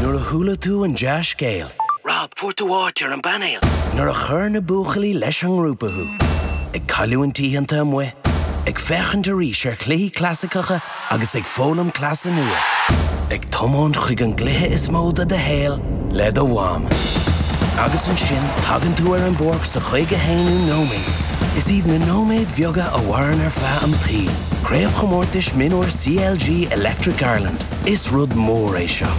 Nuair a chuala tú an dea-scéal. Rob, fuair tú áit ar an bpainéal! Nuair a chuir na buachaillí leis an ngrúpa thú. Ag cailliúint oícheanta amuigh, ag féachaint arís ar chluichí clasaiceacha agus ag foghlaim cleasa nua. Ag tiomáint chuig an gcluiche is mó i do shaol le do mham. Agus ansin tagann tú ar an bpáirc sa chaoga haonú nóiméad. Is iad na nóiméid bheaga a mhaireann ar feadh an tsaoil. Craobhchomórtais Mionúir CLG Electric Ireland. Is rud mór é seo.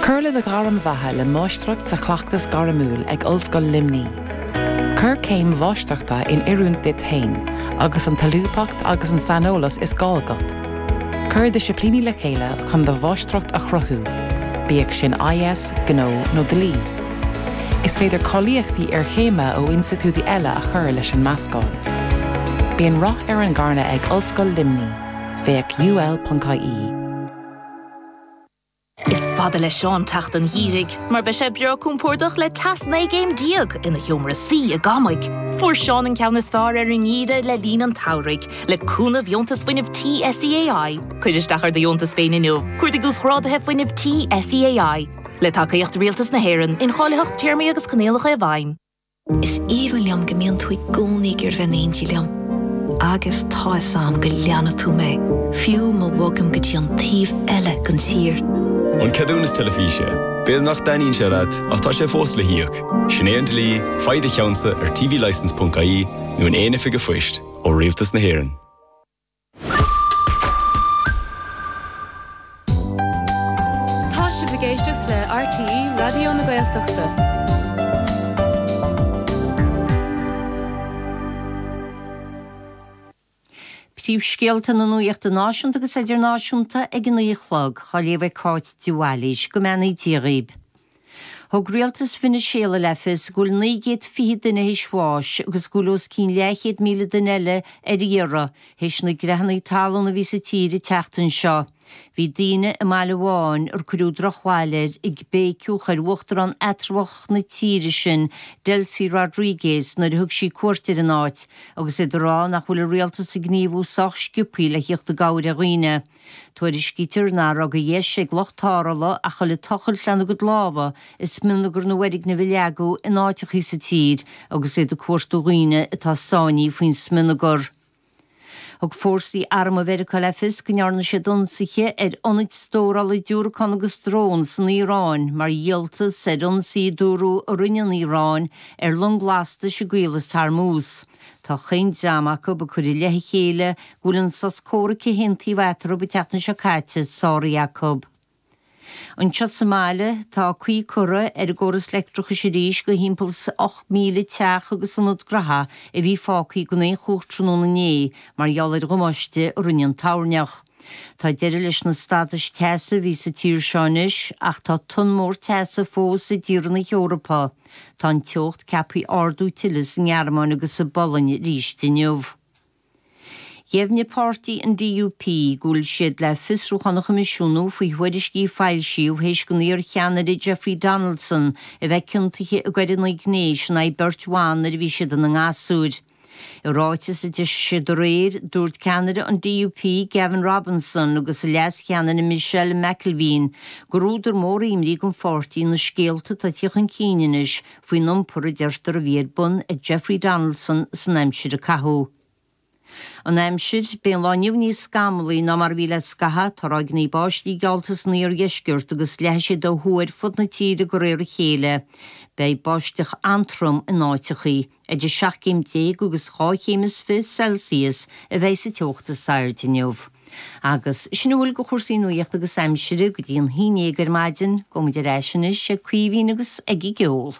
Cuir le do ghairm bheatha le Máistreacht sa Chleachtas Gairmiúil ag Ollscoil Luimní. Cuir céim Mháistreachta in oiriúint duit féin agus an tsolúbthacht agus an saineolas is gá agat. Cuir disciplíní le chéile chun do Mháistreacht a chruthú, bíodh sin IS, Gnó nó Dlí. Is féidir cáilíochtaí iarchéime ó institiúidí eile a chur leis an meascán. Bíonn rath ar an gcarnadh ag Ollscoil Luimní. Féach UL.ie. Is fada le Seán teacht an gheimhridh mar beidh sé breá cúmpórdach le teas 19 gcéim ina sheomra suí i gCamaigh. Fuair Seán an ceann is fearr ar an ngeimhreadh le linn an tSamhraidh, le cúnamh Dheontas Fuinnimh Tí SEAI. Cuir isteach ar do dheontas féin inniu, Cuardaigh Uasghráduithe Fuinnimh Tí SEAI. Le tacaíocht Rialtas na hÉireann, incháilitheacht Téarmaí agus Coinníollacha i bhfeidhm. Is aoibhinn liom go mbíonn tú i gcónaí ag iarraidh bheith in éindí liom. Agus tá fhios a'm go leanfaidh tú mé, fiú má bhogaim go dtí an taobh eile den tír. An ceadúnas teilifíse. B'fhéidir nach dtaitníonn sé leat ach tá sé fós le híoc. Sin é an dlí, faigh do cheannsa ar tvlicense.ie nó in aon oifig a' phoist, ó Rialtas na hÉireann. Tá sibh ag éisteacht le RTÉ Raidió na Gaeltachta. Príomhscéalta na nuachta náisiúnta agus idirnáisiúnta ag a naoi a chlog. Á léamh ag Cáit de Bhailís. Go mbeannaí Dia dhaoibh. Thug rialtas Veiniséala le fios go bhfuil naoi gcéad fiche duine théis bháis agus go bhfuil os cionn leathchéad míle duine eile ar iarraidh théis na gcreathanna talún a bhí sa tír an tseachtain seo. Bhí daoine i mbaile amháin ar cuireadh drochbhail air ag béiceadh chuig uachtarán eatramhach na tíre sin, Delcy Rodriguez, nuair a thug sí cuairt ar an áit, agus iad ag rá nach bhfuil a rialtas ag gníomhú sách sciopthaí le theacht i gcabhair ar dhaoine. Tuairiscítear nach raibh de dheis ag lucht tarrthála ach a ghoil ag tochailt lena gcuid lámha i smionagar na bhfoirgneamh a leagadh in áiteachaí sa tír agus iad ag cuartú dhaoine atá sáinní faoin smionagar. Thug fórsaí armtha Mheiriceá le fios go ndearna siad ionsaithe ar ionaid stórála diúracán agus drón san Iaráin mar dhíoltas ar ionsaí a dúradh a rinne an Iaráin ar long lastais i gCaolas Hormuz. Tá 'chaon dream acu ag cur i leith a chéile go bhfuil an sos comhraic a haontaíodh eatarthu an tseachtain seo caite sáraithe acu. Anseo sa mbaile tá caoi curtha ar an gcóras leictreachais arís go thimpeall is 8,000 teach agus ionad gnotha a bhí fágtha gan aon chumhacht tráthnóna inné mar gheall ar dhamáiste a rinne an toirneach. Tá deireadh leis na stadais teasa a bhí sa tír seo anois ach tá tonn mhór teasa fós i dtíortha na hEorpa. Tá an teocht ceaptha ardú tuilleadh sa nGearmáin agus sa bPolainn arís inniu. Dheimhnigh páirtí an DUP go bhfuil siad le fiosrúchán a choimisiúnú faoi thuairiscí a foilsíodh théis don iar-cheannaire Jeffrey Donaldson a bheith ciontaithe i gcoireanna gnéis in aghaidh beirt bhan nuair a bhí siad ina ngasúir. I ráiteas a d'eisigh siad aréir, dúirt ceannaire an DUP, Gavin Robinson agus a leas-cheannaire Michelle McIlveen gur údar mór imní don pháirtí na scéalta atá ag teacht chun cinn anois faoin iompar a deirtear a bhí ar bun ag Jeffrey Donaldson san aimsir a caitheadh. An aimsir, beidh an lá inniu níos scamallaí ná mar a bhí le scaitheamh, tá ráigeanna báistí geallta san iardheisceart agus leathfaidh siad ó thuaidh ar fud na tíre de réir a chéile. Beidh báisteach an-trom in áiteachaí. Idir seacht gcéim déag agus dhá chéim is fiche Celsius a bheidh sa teocht is airde inniu. Agus sin a bhfuil de chúrsaí nuachta agus aimsire go dtí an haon dhéag ar maidin. Gabhaimid ar ais anois ag Caoimhín agus ag an gceol.